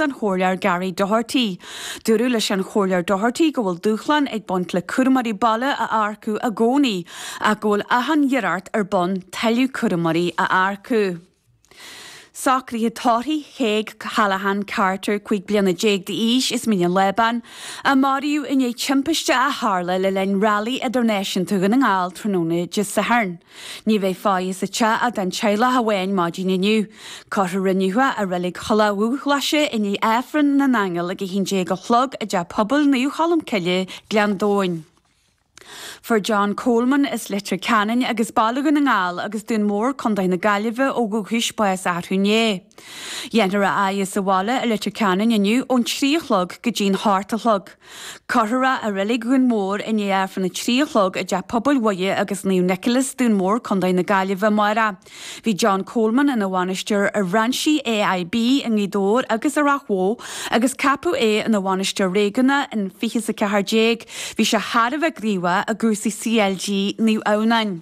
an Chomhairleoir Gary Doherty. Dúradh leis an Chomhairleoir Doherty go bhfuil dúshláin ag baint le cúramóirí baile a earcú i gcónaí ach go bhfuil achan iarracht ar bun tuilleadh cúramóirí a earcú. Socruithe tórraimh Thaidhg Callaghan Carter, 15 bliana d'aois as Mín an Lábáin, a maraíodh i ndiaidh timpiste a tharla le linn Railí Idirnáisiúnta Dhún na nGall tráthnóna Dé Sathairn. Ní bheidh faire sa teach ach don teaghlach amháin maidin inniu. Cuirfear é inniu i Reilig Thulaigh Dhubhghlaise i ndiaidh Aifreann na nAingeal ag 11 a chlog i dTeach Pobail Naomh Cholm Cille, Gleann Domhain. Fuair John Coleman as Leitir Ceanainn agus Baile Dhún na nGall agus Dún Mór, Co na Gaillimhe ó dhúchais, bás arú inné. Dhéanfar é a fhaire sa bhaile i Leitir Ceanainn inniu ón trí a chlog go dtí'n hocht a chlog. Cuirfear é i reilig Dhún Mór i ndiaidh Aifreann a trí a chlog i dteach pobail Mhuire agus Naomh Nicholas, Dún Mór, Co. na Gaillimhe, amáireach. Bhí John Coleman ina bhainisteoir ar bhrainsí AIB i nGaoth Dobhair agus i Ráth Bhoth agus ceapadh é ina bhainisteoir réigiúnach in 2014. Bhí sé thar a bheith gníomhach i gcúrsaí CLG Naomh Adhamhnáin.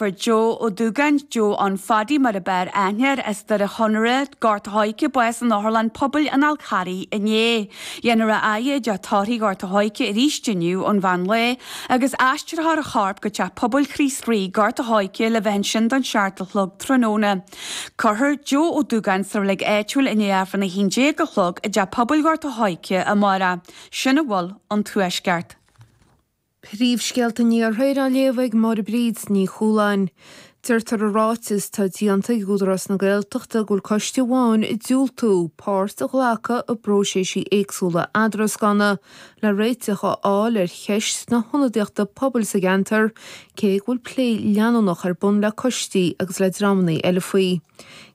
Fuair Joe Ó Dúgáin, Joe Ann Phaddy mar ab fhearr aithne air as Doire Chonaire, Gort a' Choirce, bás in Otharlann Pobail an Fhál Charraigh inné. Dhéanfar é a fhaire i dteach tórraimh Ghort a' Choirce arís inniu ón mheán lae agus aistreofar a chorp go Teach Pobail Chríost Rí, Gort a' Choirce le bheith ansin don seacht a chlog tráthnóna. Cuirfear Joe Ó Dúgáin sa reilig áitiúil i ndiaidh Aifreann 11 a chlog i dTeach Pobail Ghort a' Choirce amáireach. Sin a bhfuil ón Tuaisceart. Príomhscéalta an Iarthair á léamh ag Máire Bríd Ní Chualáin. Deirtear i ráiteas atá déanta ag Údarás na Gaeltachta go bhfuil coiste amháin ag diúltú páirt a ghlacadh i bpróiséisí éagsúla eadrascanna le réiteach a fháil ar cheist na hionadaíochta pobail sa gceantar cé go bhfuil plé leanúnach ar bun le coistí agus le dreamanna eile faoi.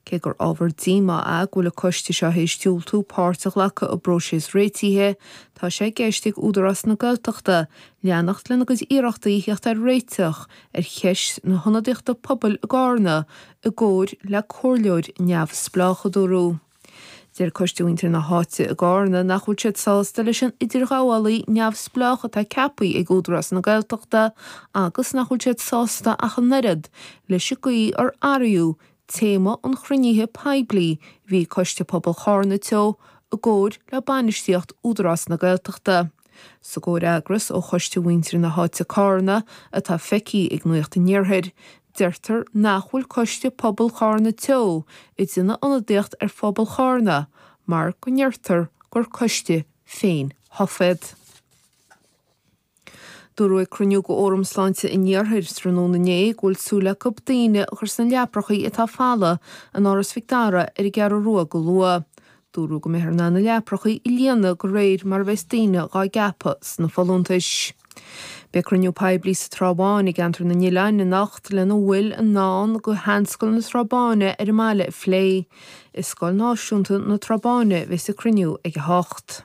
Cé gur ábhar díomá é go bhfuil an coiste seo théis diúltú páirt a ghlacadh i bpróiseas réitithe, Tá sé i gceist ag Údarás na Gaeltachta leanacht lena gcuid iarrachtaí theacht ar réiteach ar cheist na hionadaíochta pobail i gCarna i gcomhair le comhairleoir neamhspleách, a dúradh. Deir coiste mhuintir na háite i gCarna nach bhfuil siad sásta leis an idirghabhálaí neamhspleách atá ceapaithe ag Údarás na Gaeltachta agus nach bhfuil siad sásta ach an oiread leis an gcaoi ar athraíodh Téama an chruinnithe poiblí, bhí Coiste Pobail Charna Teo i gcomhair le bainistíocht Údarás na Gaeltachta, sa gcomhfhreagras ó Choiste Mhuintir na hÁite Carna atá feicthe ag Nuacht an Iarthair, deirtear nach bhfuil Coiste Pobail Charna Teo ag déanamh ionadaíocht ar phobal Charna mar go ndeirtear gur coiste féin-thofa iad. Dúradh ag cruinniú de Fhóram Sláinte an Iarthair tráthnóna inné go bhfuil súil acu daoine a chur sna leaprachaí atá folamh in Áras Mhic Dara ar an gCeathrú Rua go luath. Dúradh go mbeifear in ann na leaprachaí a líonadh de réir mar a bheas daoine dhá gceapadh sna folúntais. Beidh cruinniú poiblí sa Trá Bháin i gCeantar na nOileán anocht lena bhfuil i ndán do sheanscoil na Trá Báine ar an mbaile a phlé. I Scoil Náisiúnta na Trá Báine a bheas an cruinniú ag 8.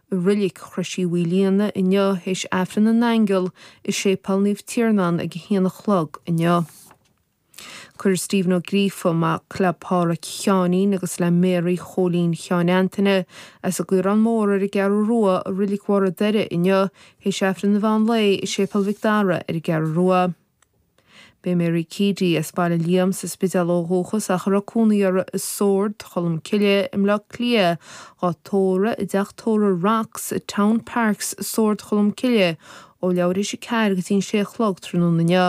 I Reilic Chrois Uí Mhaoilíona inniu théis Aifreann na nAingeal i Séipéal Naomh Tiarnán ag a haon a chlog inniu. Cuireadh Stephen Ó Gríofa, mac le Pádhraic Sheáinín agus le Mary Chóilín Sheáin Antaine, as an gCaorán Mór ar an gCeathrú Rua i Reilic Bharr a' Doire inniu théis Aifreann an Mheán Lae i Séipéal Mhic Dara ar an gCeathrú Rua. Beidh Mary Keady as Baile Liam sa Spidéal ó dhúchas ach a raibh cónaí uirthi i Sord, Cholm Cille, i mBleá Cliath, dhá tórramh i dTeach Tórraimh Rocks, Town Parks, Sord Cholm Cille, ó leathuair théis 4 go dtí an 6 a chlog tráthnóna inniu.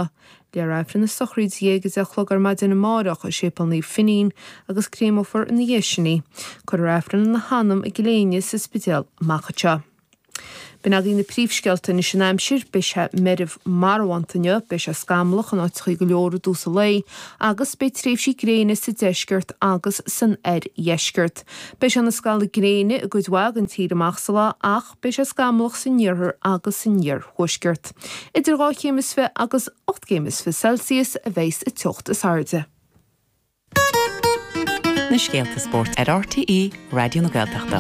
Léifear Aifreann na sochraide ag 10 a chlog ar maidin amáireach i Séipéal Naomh Finín agus créamfar ina dhiaidh sin í. Cuirfear Aifreann lena hanam i gCill Éinne sa Spidéal amach anseo. B'in agaibh na príomhscéalta anois an aimsir, beidh sé meirbh marbhánta inniu, beidh sé scamallach in áiteachaí go leor i dtús an lae agus beidh tréimhsí gréine sa deisceart agus san oirdheisceart. Beidh sé ina scalladh gréine i gcuid mhaith den tír amach sa lá ach beidh sé scamallach san iarthar agus san iarthuaisceart. Idir dhá chéim is fiche agus ocht gcéim is fiche Celsius a bheas an teocht is airde. na scéala spóirt ar RTÉ Raidió na Gaeltachta.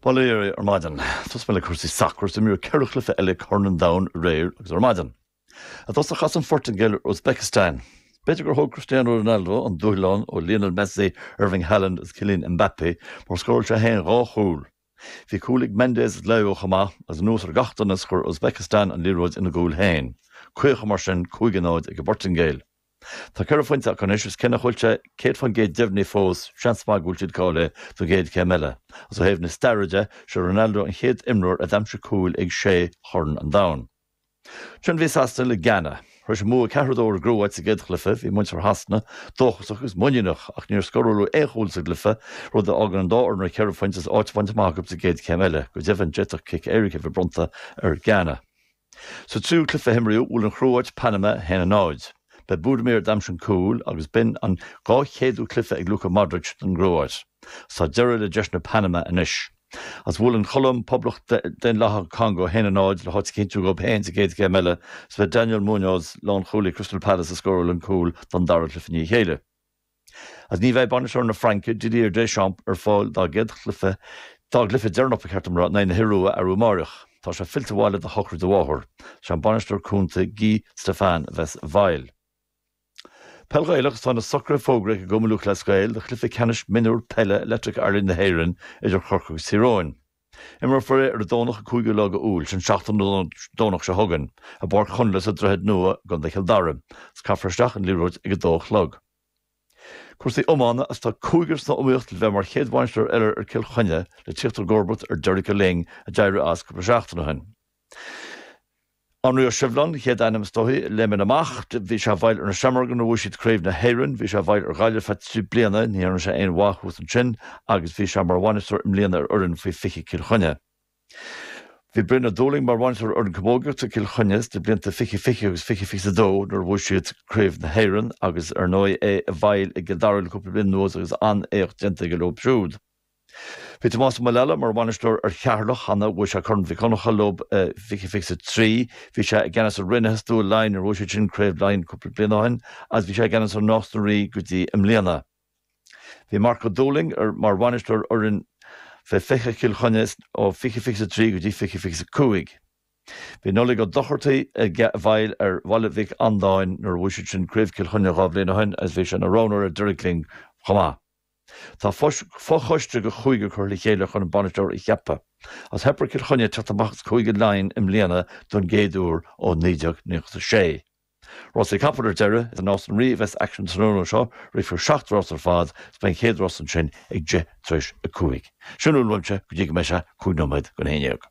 Bail oraibh ar maidin. Tosóidh mé le cúrsaí sacair is imríodh cheithre chluiche eile i gCorn an Domhain aréir agus ar maidin. I dtosach chas an Phortaingéil ar Uzbekistan. B'fhéidir gur thóg Cristiano Ronaldo an dúshlán ó Lionel Messi, Erling Haaland agus Kylian Mbappé mar scóráil sé féin dhá chúl. Bhí cúl ag Mendes is Leão chomh maith, agus anuas ar gach donas chuir Uzbekistan an liathróid ina gcúl féin. Críochnaigh mar sin cúig a náid ag an bPortaingéil. Tá ceithre phointe acu anois agus cé nach bhfuil sé 100% deimhnithe fós, seans maith go bhfuil siad cáilithe don gcéad céim eile. Agus ó thaobh na staire de, sé Ronaldo an chéad imreoir a d'aimsigh cúl ag sé Chorn an Domhain. Ansin bhí Sasana le Gána. Théis an bhua ceathair a dó ar an gCróit sa gcéad chluiche. Bhí muintir Shasana dóchasach agus muiníneach ach níor scóraladh aon chúl sa gcluiche, rud a fhágann an dá fhoireann ar cheithre phointe is áit bainte amach acu sa gcéad céim eile. Go deimhin, d'fhéadfadh cic éirice a bheith bronnta ar Ghána. Sa tríú cluiche a himríodh, bhuail an Chróit Panama 1-0. Ba é Budimir a d'aimsigh an cúil agus b'in an dhá chéadú cluiche ag Luka Modric don gCróit. Tá deireadh le deiseanna Panama anois. Is bhuaigh an Cholóim, Poblacht Daonlathach an Congó, a haon a náid le háit a chinntiú dhóib féin sa gcéad chéim eile, is ba é Daniel Muñoz, lánchúlaí Crystal Palace a scóráil an cúl don dara cluiche i ndiaidh a chéile. Agus ní bheidh bainisteoir na Fraince, Didier Deschamps, ar fáil dá gcéad chluiche, dá gcluiche deireanach ba cheart dom a rá, in aghaidh na hIorua arú amárach, tá sé fillte abhaile do shochraid a mháthar. Is é an bainisteoir cúnta Guy Stéphane a bheas i bhfeighil. Peil Ghaelach Tá na socruithe fógraithe ag Cumann Lúthchleas Gael do chluiche ceannais mionúr peile Electric Ireland na hÉireann idir Chorcaigh agus Tír Eoghain. Imreofar é ar an Domhnach an 5ú lá de Iúil, sin seachtain ón Domhnach seo chugainn, i bPáirc Chonla sa Droichead Nua i gContae Chill Dara. Is caithfear isteach an liathróid ag a dó a chlog. Cúrsaí Iomána Is tá cúigear sna iomaíocht le bheith mar chéad bhainisteoir eile ar Chill Chainnigh le tíocht i gcomharbacht ar Derek Lyng a d'éirigh as cúpla seachtain ó shin. Anraí Ó Sibhleáin an chéad ainm is dóichí a léimeann amach. Bhí sé i bhfeighil ar na Seamróga nuair a bhuaigh siad Craobh na hÉireann. Bhí sé i bhfeighil ar Ghaillimh feadh trí bliana, ní dhearna sé aon mhaith thuas ansin agus bhí sé mar bhainisteoir i mbliana ar fhoireann faoi 20 Cill Chainnigh. Bhí Brian Ó Dúlaing mar bhainisteoir ar fhoireann camógaíochta Cill Chainnigh sna blianta 20 20 agus 20 22 nuair a bhuaigh siad Craobh na hÉireann agus ar ndóigh é i bhfeighil i gCill Dara le cúpla bliain anuas agus an-éacht déanta aige leo siúd. Bhí Tomás Ó Muraile mar bhainisteoir ar Cheatharlach cheana, bhuaigh sé Corn Mhic Dhonncha leo i 2023. Bhí sé i gceannas ar Raonaithe Stua Laighin nuair a bhuaigh siad sin Craobh Laighin cúpla bliain ó shin agus bhí sé i gceannas ar Nás na Rí go dtí i mbliana. Bhí Marc Ó Dúlaing mar bhainisteoir ar fhoireann Faoi 20 Chill Chainnigh ó 2023 go dtí 2025. Bhí Nollaig Ó Dochartaigh i bhfeighil ar Bhaile Mhic Andáin nuair a bhuaigh siad sin Craobh Chill Chainnigh dhá bhliain ó shin agus bhí sé ina roghnóir ag Derek Lyng chomh maith. Tá fochoiste de chúigear curtha le chéile chun an bainisteoir a cheapadh. Is theip ar Chill Chainnigh teacht amach as Cúige Laighean i mbliana don gcéad uair ó 1996. Rásaí capall ar deireadh, is i Nás na Rí a bheas aicsean an tráthnóna seo, rithfear seacht rás ar fad is beidh an chéad rás ansin ag deich tar éis a cúig. Sin a bhfuil uaimse go dtí go mbeidh sé cúig nóiméad go haon ndéag.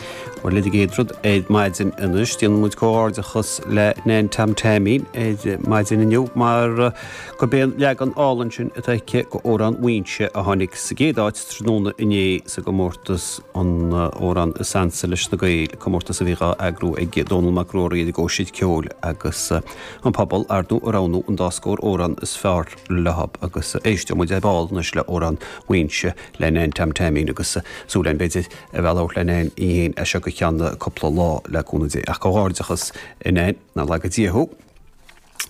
Bhuel, an chéad rud ar maidin anois, déanann muid comhghairdeachas le Nan Tom Taimín ar maidin inniu mar go b'é'n leagan álainn sin atá aici de Amhrán Mhaínse a tháinig sa gcéad áit tráthnóna inné sa gcomórtas an Amhrán is ansa leis na Gaeil, comórtas a bhí dhá eagrú ag Dónall Mac Ruairí ag Cóisir Cheoil agus an pobal ar ndóigh a roghnú an dá scór amhrán is fearr leob agus éisteoidh muid ar ball anois le Amhrán Mhaínse le Nan Tom Taimín agus súil againn b'fhéidir a bheith ag labhairt le Nan í féin as seo go ceann cúpla lá, le cúnamh Dé. Ach comhghairdeachas, a Nan nár laga Dia thú!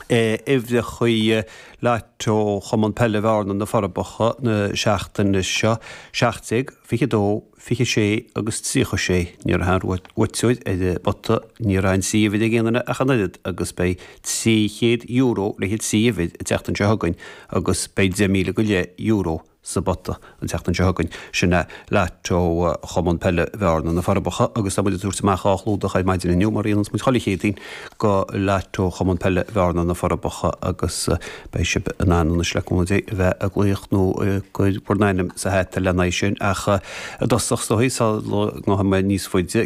a uimhreachaí Lotto Chumann Peile Bhearna, Na Forbacha, na seachtaine seo, 17, 22, 26 agus 36. Ní raibh aon bhuaiteoir ar an bpota, ní raibh trí uimhir ag aon duine ach an oiread, agus beidh €300 le haghaidh trí uimhir an tseachtain seo chugainn agus beidh €10,000 go leith euro sa bpota an tseachtain seo chugainn, sin é, lotto Chumann Peile Bhearna, Na Forbacha, agus tá muid ag tabhairt amach dhá chlúdach ar maidin inniu, mar a níonns muid chuile Chéadaoin, do lotto Chumann Peile Bhearna, Na Forbacha, agus beidh sibh in ann anois, le cúnamh Dé, bheith ag glaoch nó ag cur bhur n-ainm sa hata lena aghaidh sin, ach i dtosach, is dóigh, sula ngabhfaidh mé níos faide,